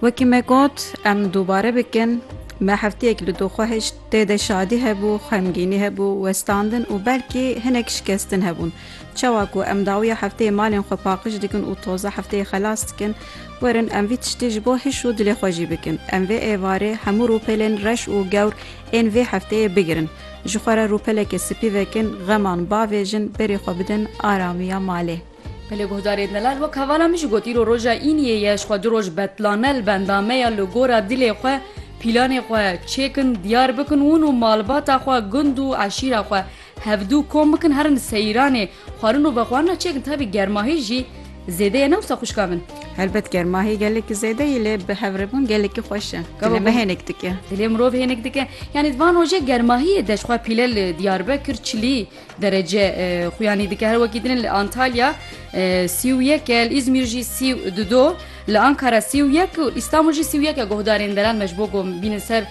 Wekî me got em dubare bikin me heftiyek li doxwe hişt tê de şadî hebû, xemgînî hebû, westandin û belkî hinek şikestin hebûn. Çawa ku em dawiya hefteyê malên xwe paqij dikin û toza hefteyê xelas dikin, werin em vî tiştê ji bo hiş û dilê xwe jî bikin. Em vê êvarê hemû rûpelên reş û gewr ên vê hefteyê bigirin. Ji xwe re rûpeleke spî vekin, xeman bavêjin, berê xwe bidin aramiya malê. Belê guhdarê delal wek hevala min jî got îro roja îniyê ye ji xwe du roj betlane li benda me ya li gora dilê xwe pîlanê xwe çêkin diyar bikin ûn û malbata xwe gund û eşîra xwe hevdu kom bikin herin seyiranê xwarin û vexwarina çêkin tabî germahî jî zêde ye ne wisa xwişka min. Helbet germahî gelekî zêde ye lê bi hevrêbûn gelekî xweş e dilê me hênik dike. Dilê mirov hênik dike yanî di van rojê germahiyê de ji xwe pîle li diyarbekir çilî Derece xuyanî dike her wekî din li Antalya sî û yek e li Îzmîr jî sî û du do li Ankara sî û yek û Îstanbul jî sî û yek e guhdarên deran me ji bo ku bînin ser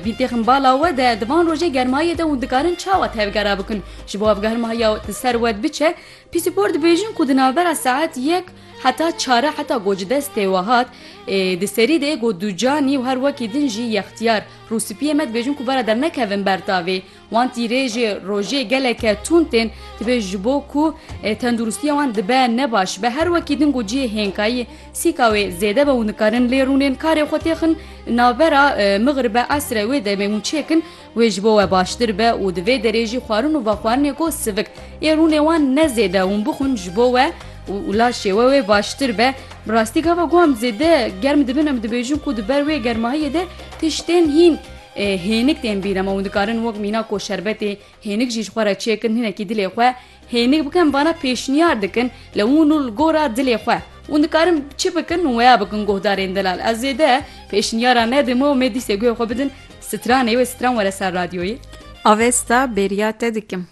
bîn têxin bala we de di van rojê germayê de hûn dikarin çawa tevgera bikin ji bo ev germaya di ser we biçe pîsîpor dibêjin ku di navbera saet yek heta çare heta ku ji destê we hat di serî de êgo ducanî û her wekî din jî yextiyar rûspiyê me dibêjin ku bara dernekevin ber tavê Wan tîrê ji rojê geleke tund tên dibe ji bo ku tenduristiya wan dibe ne baş be. Her wekî din ku cihê hênkayî sîka wê zêde be û nikarin lê rûnên karê xwe têxin navbera mixribe esre wê demê hûn çêkin wê ji bo we baştir be û di vê derê jî xwarin û vexwarinê ku sivik ê rûnê wan ne zêde hûn bixwin ji bo we û laşê we wê baştir be. Bi rastî gava ku em zêde germ dibin em dibêjin ku di ber wê germahiyê de tiştên hîn. Hênik tên bîra me û dikarin wek mîna ku şerbetê hênik jî ji xwe re çêkin hinekî dilê xwe hênik bikin vana pêşniyar dikin li hûn û li gora dilê xwe hûn dikarin çi bikin û weya bikin guhdarên delal ez zêde pêşniyara me dime û me dîsê guhê xwe bidin stranê wê stran were ser radyoyê. Avesta bêriya te dikim.